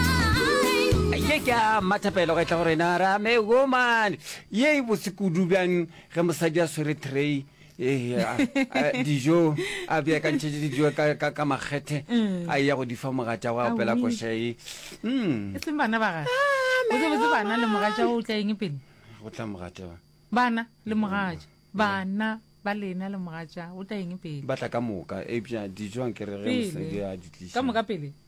ye ke a mathapelo ga e tla go rena ra me woman ye e botse kudu bjang ge mosadi a swere tray eh, a- a- dijo a beakantšhetse dijo ka- ka ka makgethe a ya go di fa mogatša go apela Awi. košae mm e seng bana ba gae botsebotse bana le mogatša o tla eng pele go tla mogatša ba bana le mogatša bana ba lena le mogatša o tla eng pele ba tla ka moka eupša dijo ankere ge Pele. mosadi a di tlisa ka moka pele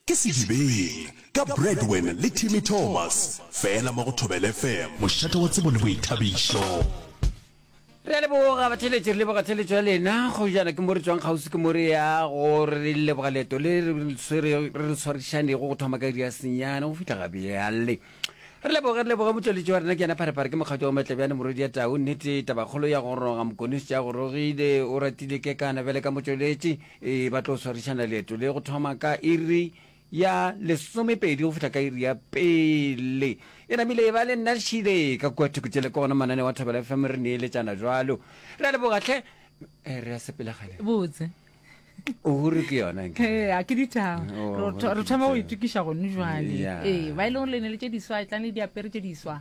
Ke Sedibeng, ka Bradwin le Timmy Thomas, fela mo go Thobela FM. Mošate wa tsebo le boithabišo. Re a leboga batheletši, re leboga theletšo ya lena. Go jana ke mo re tswang kgauswi ke mo re ya go re leboga leeto le re le tshwarišanego go thoma ka iri ya senyane go fihla ga bjale. Re leboge, re leboge motšweletši wa rena ke yena Pharepare, ke mokgatšo wa Matlebjane morwedi ya tau. Nnete tabakgolo ya go roga, Mokonoši tša go rogile, o ratile kekana bjale ka motšweletši. Ee, ba tlo swarišana leeto le go thoma ka iri ya lesomepedi go fihla ka iri ya pele. E namile e ba le nna šile ka kua thoko tšele kona manane wa thobela fm re neeletšana jwalo re a lebogatlhe eh, re a sepelegane botse ohuru ke yona a ke dithago oh, re thoma go itokiša gone jale ee ba e leng gore le ne le tše diswa e tlang le diapere tše diswa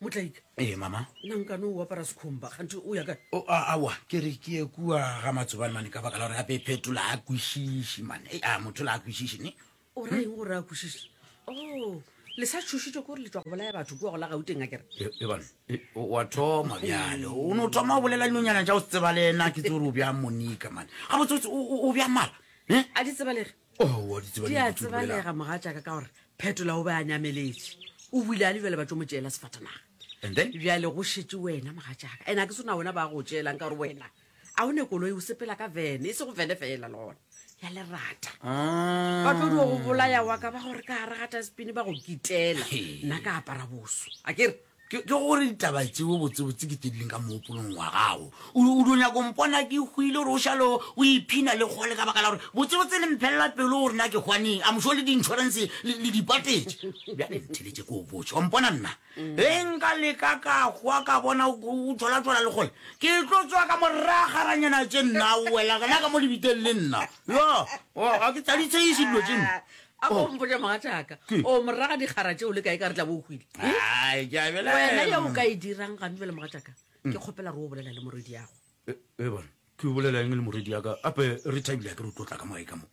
motlaika ee mama nna nkane o apara sekhomba kgante o ya kae o a awa ke re ke ye kua ga matsobane mane ka baka la gore gape e phetola a kwešiši mane e a motho la a kwešiši ne o ra eng gore a kwešiši o oh, le sa tšhošitše ko gore le tswa go bolaya batho kua go la gauteng a kere e, e bane e, wa thoma bjale o ne o thoma o bolela dinonyana ja o se tseba le ena ke tse gore o bja monika mane ga botsebotse o bja mala a di tsebalege owa di tseba di a tsebalega moga jaaka ka gore phetola o be a nyameletše o buile a le jale ba tso mo tšeela sefatanaga and then bjale go šetse wena moga jaaka ene a ke sona wena ba go tšeelang ka gore wena a o ne koloi o sepela ka vene e se go vene fela le gona ya lerata ah. ba tlo di go bolaya wa ka ba gore ka gare ga taspine ba go kitela nna ka apara boso a kere Ke gore ditaba tseo botsebotse ke tse di leng ka moopolong wa gago. O do nyako mpona ke hwile gore o šalo o iphina le kgole ka baka la gore botsebotse le mphelela pelo gore na ke hwaneng a mošo le di-insurance le dipatetše. Bjale ntheletše ko o botše wa mpona nna mm. ge nka leka ka hwa ka bona o tšholatšhola le kgole ke tlo tswa ka moragaranyana tše nna o wela gana ka mo lebiteng le nna yo ga ke tsaditsheiše dilo tše nna a ko Oh. mpotša mogatšaka Ke- o moraga dikgara tšeo le kae ka re tla bo o hwile Ai, ke a bela- wena ya o ka e dirang gane bjale mogatšaka ke kgopela re o bolela le moredi yago E- e bona ke o bolela eng le moredi yaka ape re thabile ke re o tlo tla ka mogae ka mo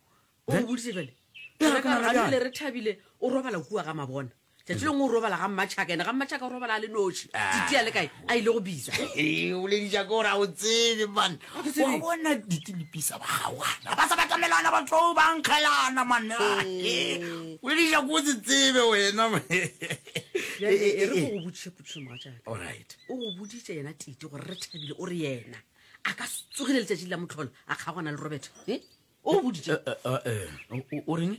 o Eh? boditse bjale Ya, Jwale ka ke nagana gore gane bjale. bjale re thabile o robala kua ga mabona tšatši lengwe o robala ga mmatšhaka ene ga mmatšhaka o robala a le noši Ah. titi a le kae a ile go bitsa Ee, o bolediša ko ra o tsebe man Ga ke tsebe. wa bona ditilipisa ba gawana ba sa batamelana ba tlo ba nkgelana man Ee. o bolediša ko o se tsebe wena man. Bjale, Ee, ee, e re ee. ko go botšiše potšišo mogatšaka Alright. o go boditše yena tite gore re thabile o re yena a ka se tsogile letšatši la motlholo a kgaogana le robert e o boditše o reng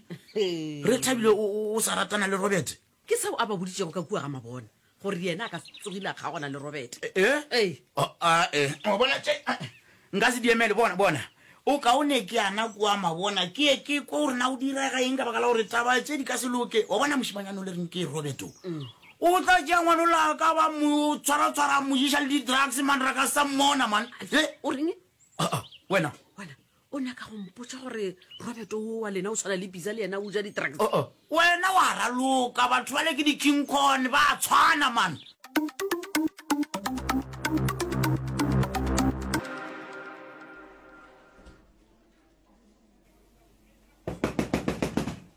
re thabile o sa ratana le robert ke seo a ba boditšego ka kua ga mabona gore yena a ka tsogile a kgaogana le robert ee bona tše nka se diemele bona bona o kaone ke ana kua mabona ke ye ke kwa gore na o direga eng ka baka la gore taba tše di ka se loke wa bona mošimanyane o le reng ke roberto o tla tšea ngwane o la ka ba mo tshwaratshwara mojiša le di-drugs man ra ka sa mmona man o reng wena O nyaka go mpotša gore Roberto wo wa lena o tshwana le Pizza le yena o ja di-drugs? Uh-uh. Wena wa raloka, batho bale ke di-King Kong, ba a tshwana man.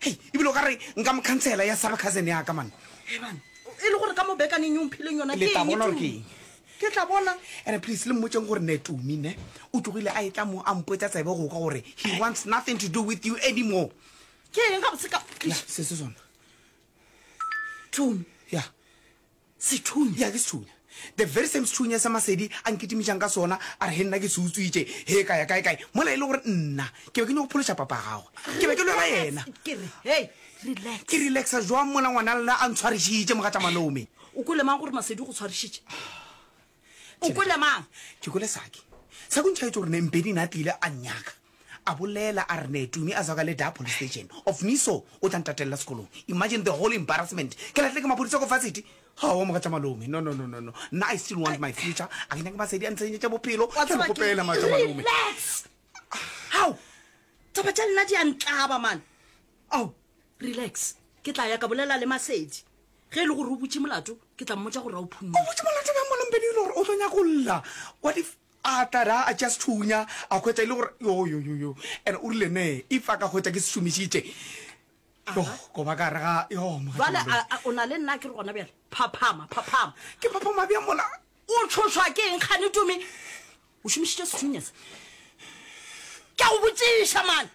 Hei, e bile o ka re nka mo khansela ya saba cousin ya ka, man. Eban, e le gore ka mo bekaneng ye o mphileng yona ke eng, Tumi? Ke tla bona. Ene please, le mmotseng gore ne Tumi, ne, o tlogile a etla mo a mpotsa tsebe go kwa gore he wants nothing to do with you anymore. Ke eng gabotse ka? Ya, se se sona. Tumi. Ya. Sethunya. Ya, ke sethunya. The very same sethunya se Masedi a nkitimišang ka sona, a re he nna ke se utswitše, he ka ya kae-kae, mola e le gore nna ke be ke nyoko phološa papa ya gagwe. Ke be ke lwela yena. Ke re, hei, relax. Ke relaxa jwang mola ngwana lena a ntshwarišitše, mogatša malome? O kwele mang gore Masedi o go tshwarišitše? O kwele mang? Ke kwele Saki. Saki o ntšhaetše gore Nembedi na tlile a nnyaka. A bolela a re ne Tumi a zaka le da police station. Of me so, o tla ntatelela sekolong. Imagine the whole embarrassment. Ke lahle ke maphodisa ko varsity. Ha wa moga tša malome. No, no, no, no, no. Nna I still want my future. A ke nyake masedi a ntshenyetša bophelo. Wa tseba ke eng? Relax! Hao! Taba tša nna di a ntlaba, man. Ao, relax. Ke tla ya ka bolela le Masedi. ge e le gore o butše molato ke tla mmotsa gore a o phunne o butše molato bja molompedi e le gore o tlo nyako lla what if a tlare a tša sethunya a kgwetsa e le gore yoyoyoyo and o rile ne if a ka kgwetsa ke se šomišitše go ba ka re ga jale o na le nna ke re gona bjale phaphama phaphama ke phaphama bja mola o tshoswa ke eng kgane tome o šomišitše sethunya se ke a go botšiša mane